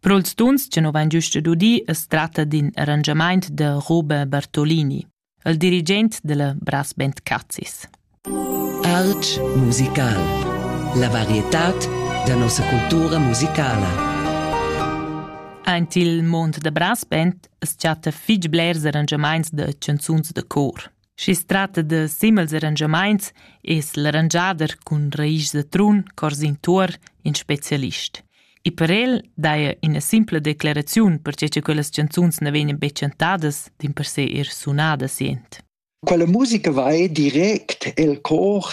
Pro'ls tuns cha nu vain güsta dudi as tratta d'ün arrangiamaint da Roba Bartolini, il dirigent da la Brass Band Cazis. Arch musical. La varietad da nossa cultura musicala. Aint il mond da brass band as chatta fich blers arrangiamaints da chanzuns da cor. Schi's tratta da simels arrangiamaints es l'arrangiader cun raisch da trun Corsin Tuor ün specialist. E per el daja üna simpla declaraziun perche cha quellas chanzuns na vegnan be chantadas, dimpersè eir sunadas jent. Quella musica vai direct el cor.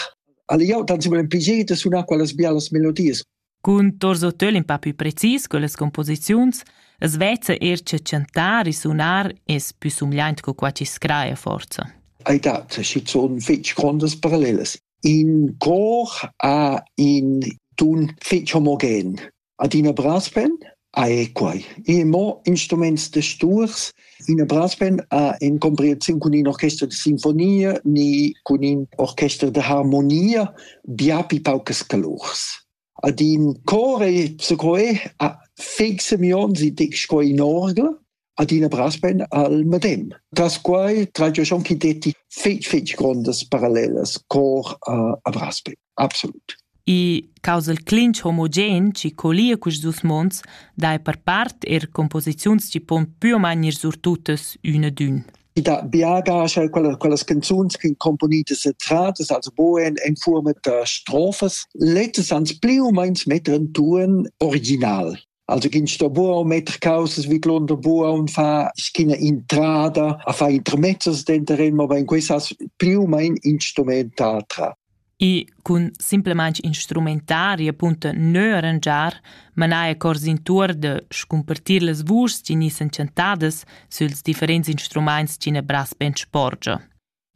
Alla jau tansimel pligier da sunar quellas bialas melodias. Cun tos hotel in pa pü precis quellas composiziuns as vezza eir che chantar e sunar es pü sumgliaint co qua chi scraja forsa. Ei dat schizuon fetg grondas parallelas. In cor ha in tun fetg homogen. Adina brass pen, Ah è quai. I è mo instruments da sturs. Ina brassband ha en comprehensiun cun in orchester da sinfonia ni cun in orchester da harmonia biapi paucas calurs. Ad in cor è secoe a feg semions i dec sco in orgel adina brasben al medem. Das quai tragia schon chi detti fetg fetg grondas parallelas cor a, a Brasben, absolut. I causal clinch homogen chi colia cus dus mons dai per part er composiziuns chi pon pü o main ir surtutas üna d'ün. I da biagas quellas, quellas canzuns che componitas e tratas, also boen in forma da strofas, lettes ans pli o meins metter in tuan original. Also ginn sto buca metter causas vidlunder buca un fa schina intrada a fa intermezzos denteren, ma in quest has più mein instrumentatra. E cun simplemente instrumentari appunto neu arrangiar, manai cors in tour de scumpartir las vuschs chi ni s'enchantadas süls differents instruments chi ne bras ben sporgia.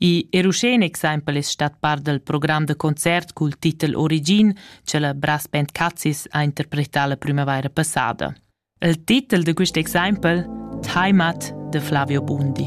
I er uschè in exempel es stat part dal program da concert cul titel Origin cha la Brass Band Cazis ha interpretà la prümavaira passada. Il titel da quist exempel Heimat de Flavio Bundi.